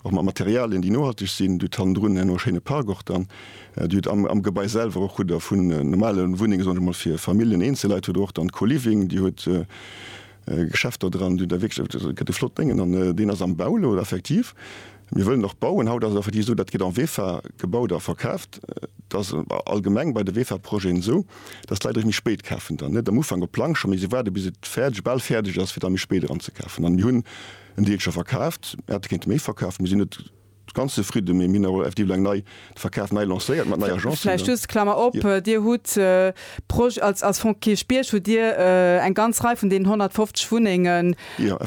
Och mat Materialien, déi nohalteg sinn. Dir hutt hannendrun herno e schéine Park och dann. Dir hutt am, am Gebai selwer och hutt Der vun normale Wunnenge, soen ech emol, fir Familljen, Eenzelleit, hutt Der och dann Co-Living, Dir hutt Geschäfter dran, Dir hutt da wierklech, also et gëtt e flott Déngen. An deen ass am Bau elo effektiv. Mir wëllen och bauen. Haut ass et effektiv esou, dat gëtt en VEFA gebaut a verkaaft. Et ass allgemeng bei de VEFA-Projeten esou, dass d'Leit erëm méi spéit kafen dann, net am Ufank op Plancher, mee si waarde bis et fäerdeg, bal fäerdeg ass, fir da méi spéit eran ze kafen. An mir hunn. En Deel scho verkaaft, mir hätte kéinte méi verkaufen. Mir sinn net ganz zefridde, mee mir hunn awer effektiv elo eng nei, de Verkaf nei lancéiert mat neier Agence. Vläicht just, Klammer op, Dir hutt Proj-, als, als Fonds Kierch Bierg hutt Dir eng ganz Rei vun deenen 150 Wunnengen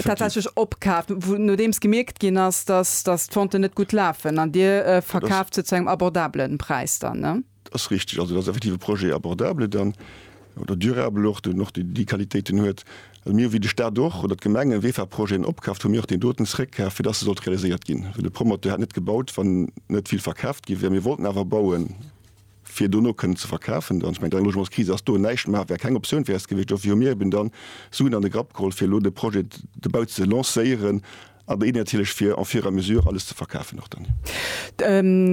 tatsächlech opkaaft, wou, nodeems gemierkt ginn ass, dass, dass d'Venten net gutt lafen an Dir verkaaft se zu engem abordabelen Präis dann, ne? Dat ass richteg. Also dat ass effektiv e Projet abordable dann, oder durable och, deen och déi déi Qualitéiten huet. Also mir hu wéi de Stat och, oder d'Gemengen, wéi fir Projeten opkaaft, hu mir och deen doten zréckkaf, fir dass e sollt realiséiert ginn. Well de Promoteur hätt net gebaut, wann net vill verkaaft gi wär. Mir wollten awer bauen, fir dono kënnen ze verkafen dann. Ech mengen, d'Logementskris ass do. Näischt maache wär keng Optioun fir eis gewiescht. Dofir hu mir eben dann Suen an de Grapp geholl, fir elo de Projet, de Bau ze lancéieren. A béi natierlech fir en fur et à mesure alles ze verkafen och dann.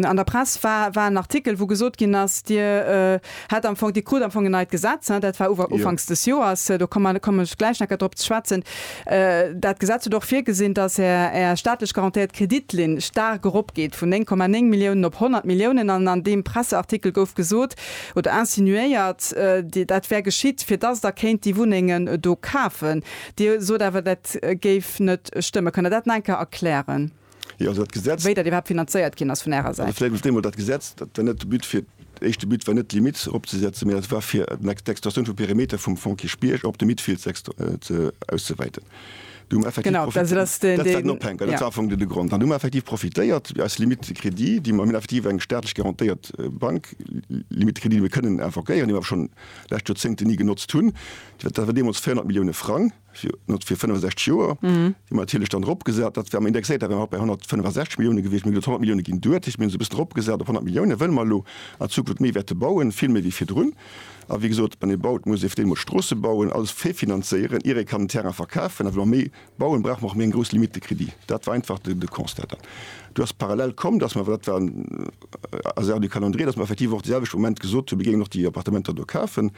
An der Press war war en Artikel, wou gesot ginn ass, Dir hätt am Fong, Dir krut am Fong en neit Gesetz, hein, dat war uwer Jo. ufanks des Joers, do komme mer, kommen ech gläich nach gär drop ze schwätzen. Dat Gesetz huet och virgesinn, dass Är Är staatlech garantéiert Kreditlinn staark eropgeet, vun 9,9 Milliounen op 100 Milliounen. An an deem Presseartikel gouf gesot oder insinuéiert, déi dat wär geschitt, fir dass Der kéint déi Wunnengen do kafen. Dir sot awer, dat géif net stëmmen. Kënnt Der dat nach eng Kéier erklären, wéi dat iwwerhaapt finanzéiert ginn ass vun Ärer Säit? Jo, also dat Gesetz, dat war net de But fir, éischt de But war net d'Limit eropzesetzen, mee dat war fir d'Extensioun vum Perimeter vum Fonds Kierchbierg op de Midfield ze auszewäiten. Do hu mer effektiv profitéiert. Dat ass den, deen, jo. Dat war am Fong de Grond. An do hu mer effektiv profitéiert aus Limite de crédit, déi mer, mir hunn effektiv eng staatlech garantéiert Bank, Limite de crédit, déi mir kënnen invoquéieren, déi mer awer schonn lescht Joerzéngten ni genotzt hunn, Dat war deemools 400 Millioune Frang fir 65 Joer, déi mer natierlech dann eropgesat. Dat war indexéiert, dat war nach bei 165 Millioune gewiescht. Mir hunn elo 100 Millioune ginn duerch, dat heescht mir hunn se e bëssen eropgesat op 100 Millioune, well mer elo an Zukunft méi wäerte bauen, vill méi wéi virdrun. A wéi gesot, wann ee baut, muss ee fir d'éischt emol Stroosse bauen, alles virfinanzéieren, ier ee kann den Terrain verkafen. A well mer méi Bauen brauch mer och méi eng grouss Limite de crédit. Dat war einfach de Constat. Dann do ass parallel komm, dass mer, well dat war en Hasard du calendrier, dass mer effektiv och de selwechte Moment gesot hunn, mir géingen och déi Appartementer do kafen,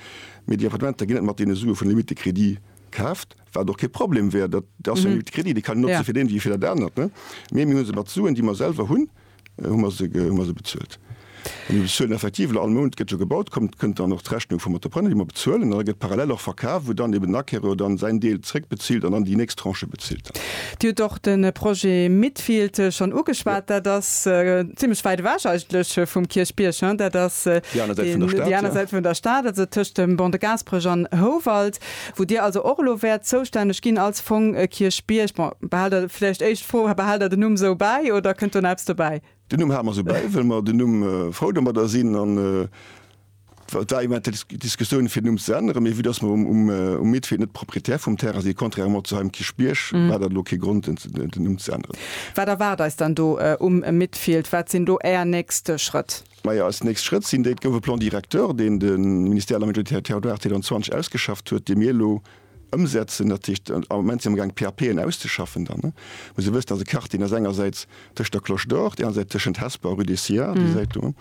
mee déi Appartementer ginn net mat deene Sue vun der Limite de crédit kaaft, wat och kee Problem wär. Dat ass jo eng Limite de crédit, déi kann een notze fir dat eent wéi fir dat anert, mee mir hu se mat Suen, déi mer selwer hunn, Hu mer se, hu mer se bezuelt. An déi bezuelen effektiv elo all Mount, gëtt jo gebaut, kommt, kënnt dann och d'Rechnung vum Entrepreneur, déi mer bezuelen, an da gëtt parallel och verkaf, wou dann eben den Acquéreur dann säin Deel zréckbezilt an dann déi nächst Tranche bezilt dann. Dir hutt och de Projet Midfield schonn ugeschwat. Dat ass zimlech wäit ewech eigentlech vum Kierchbierg, hein? Dat ass déi aner Säit vun der Stad, déi aner Säit vun der Stad, also tëscht dem Bon de Gasperech an Houwald. wou Dir also och elo wäert zoustänneg ginn als Fong Kierchbierg. Bon, behal der, vläicht éischt Fro, behal der den Numm esou bäi oder kënnt do nach eppes dobäi? Den Numm hale mer esou bäi, well mer den Numm frou domadder sinn. An et war da iwwert dat Diskussioun fir den Numm ze änneren, mee vu datt mer um Midfield net Propriétaire vum Terrain sinn, contrairement zu Heim Kierchbierg, war dat elo kee Grond den Numm ze änneren. Wat erwaart eis dann do um Midfield? Wat sinn do Är nächst Schrëtt? Majo, eis nächst Schrëtt sinn déi, et gouf e Plan directeur, deen de Ministère à la Majorité territoriale 2020 ausgeschafft huet, dee mir elo ëmsetzen. Dat heescht, am Moment si mer am gaang d'PAPen auszeschaffen. Dann muss ee wëssen, dass e Karting ass, engersäits tëscht der Cloche d'Or, op där aner Säit tëschent Hesper a Rue des Sciards, déi Säit do,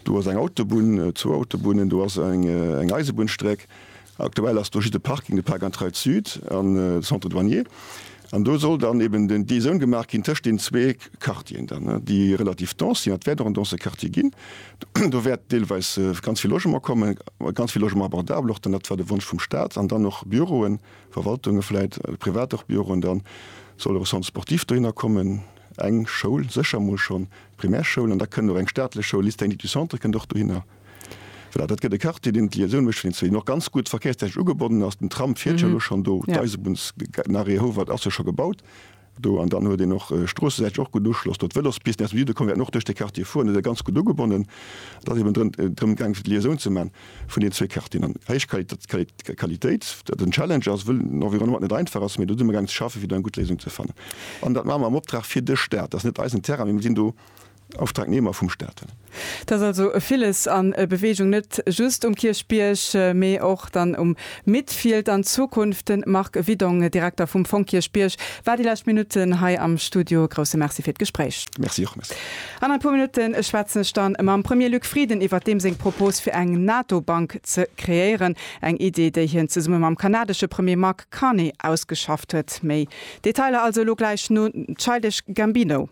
do ass eng Autobunn, zwou Autobunnen, do ass eng Eisebunnsstreck, Aktuell ass do just e Parking, de Parc Intraille Sud an de Centre Douanier. An do soll dann eben den d'Liaisoun gemaach ginn tëscht deenen zwee Quartieren dann, déi relativ dense sinn. Dat wäert och en dense Quartier ginn. Do wäert deelweis ganz vill Logement kommen, ganz vill Logement abordabel och dann. Dat war de Wonsch vum Staat. An dann och Büroen, Verwaltunge vläit, privat och Büroen. Da soll och e Centre sportif dohinner kommen, eng Schoul sécher emol schonn, d'Primärschoul. An da kënnt och eng staatlech Schoul, Lycée technique du Centre kënnt och dohinner. Voilà, dat gëtt e Quartier, deen d'Liaisoun mécht vun den zwee, deen och ganz gutt verkéierstechnesch ugebonnen ass. Den Tram fiert jo elo schonn do, d'Eisebunns, den Arrêt Houwald ass jo scho gebaut do an dann huet een och stroossesäiteg och gutt Uschloss do. D'Vélospisten aus dem Süde kommen, wäerten och duerch dee Quartier fueren, do si se ganz gutt ugebonnen. Et ass eben drën, drëm gaang fir d'Liaisoun ze man vun den zwee Quartieren an héich Qualitat, Quali, Qualitéit, dat en Challenge ass, wëll den Environnement net einfach ass, mee do si mer gaang ze schaffen, fir do eng gutt Léisung ze fannen. An dat maache mer am Optrag fir de Staat, dat ass net eisen Terrain, mee mir sinn do Auftragnehmer vum Staat. Et ass also villes a Beweegung, net just um Kierchbierg, mee och dann um Midfield an Zukunft. De Marc Widong, Direkter vum Fong Kierchbierg, war déi lescht Minutten hei am Studio. E grousse Merci fir d'Gespréich. Merci och. Merci. An e puer Minutte schwätzen ech dann mam Premier Luc Frieden iwwert deem seng Propos fir eng NATO-Bank ze kreéieren. Eng Idee, déi hien zesumme mam kanadesche Premier Mark Carney ausgeschafft huet. Méi Detailer also elo gläich no Childish Gambino.